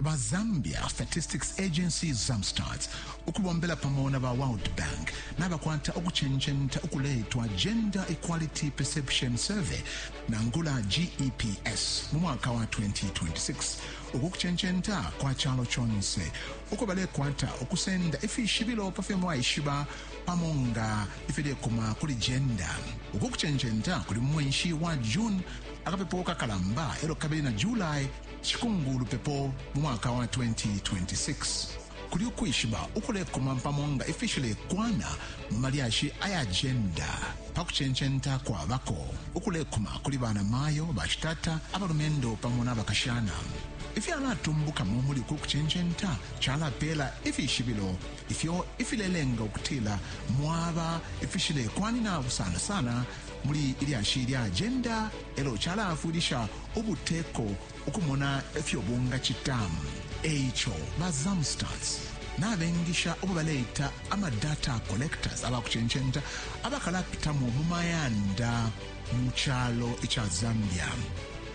ba Zambia Statistics Agency Zamstats ukubombela pamo na ba World Bank nabakwata ukucenjenta ukuletwa Gender Equality Perception Survey nangula GEPS mu mwaka wa 2026 uku kucenjenta kwa calo conse uko balekwata ukusenda ifishibilo pa fyo mwaishiba pamo nga ifilekuma kuli jenda uku kucenjenta kuli mu mwenshi wa june akapepo kakalamba elo kabili na july Cikumbulu lupepo mu mwaka wa 2026 kuli ukwishiba ukulekuma pamo nga ifishilekwana mu malyashi aya jenda pa kucencenta kwabako ukulekuma kuli bana mayo, bashitata, abalumendo pamo na bakashana. Ifyalatumbukamo muli uku kucencenta calapeela ifishibilo ifyo ifilelenga ukutila mwaba ifishilekwanina sana sana muli ilyashi lya jenda e lyo cala-afwilisha ubuteko ukumona ifyo bungacita. E ico ba Zamstats nabengisha ubo baleita ama data collectors, aba kucencenta abakalapitamo mu mayanda mu calo ica Zambia.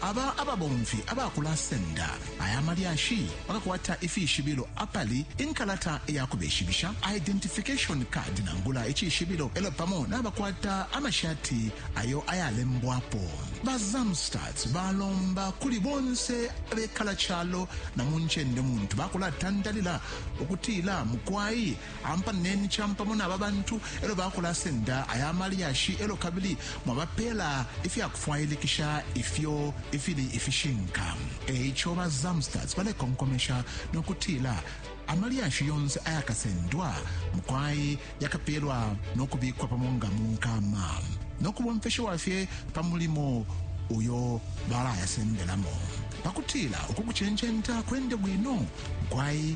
Aba ababomfi abakulasenda Aya malyashi bakakwata ifishibilo apali inkalata ya kubeshibisha, identification card nangula icishibilo, elo pamo nabakwata amashati ayo ayalembwapo. Ba Zamstats balomba kuli bonse abekala calo na muncende muntu bakulatandalila ukutila mukwai ampaneni champamo naba bantu elo bakulasenda aya malyashi elo kabili mwabapela ifyakufwailikisha ifyo ifili ifishinka eico ba zamstats balekonkomesha nokutila amalyashi yonse ayakasendwa mukwai yakapelwa nokubikwa pamo nga munkama nokubomfeshewa fye pa mulimo uyo balayasendelamo pakutila ukukuchenchenta kwende bwino mukwai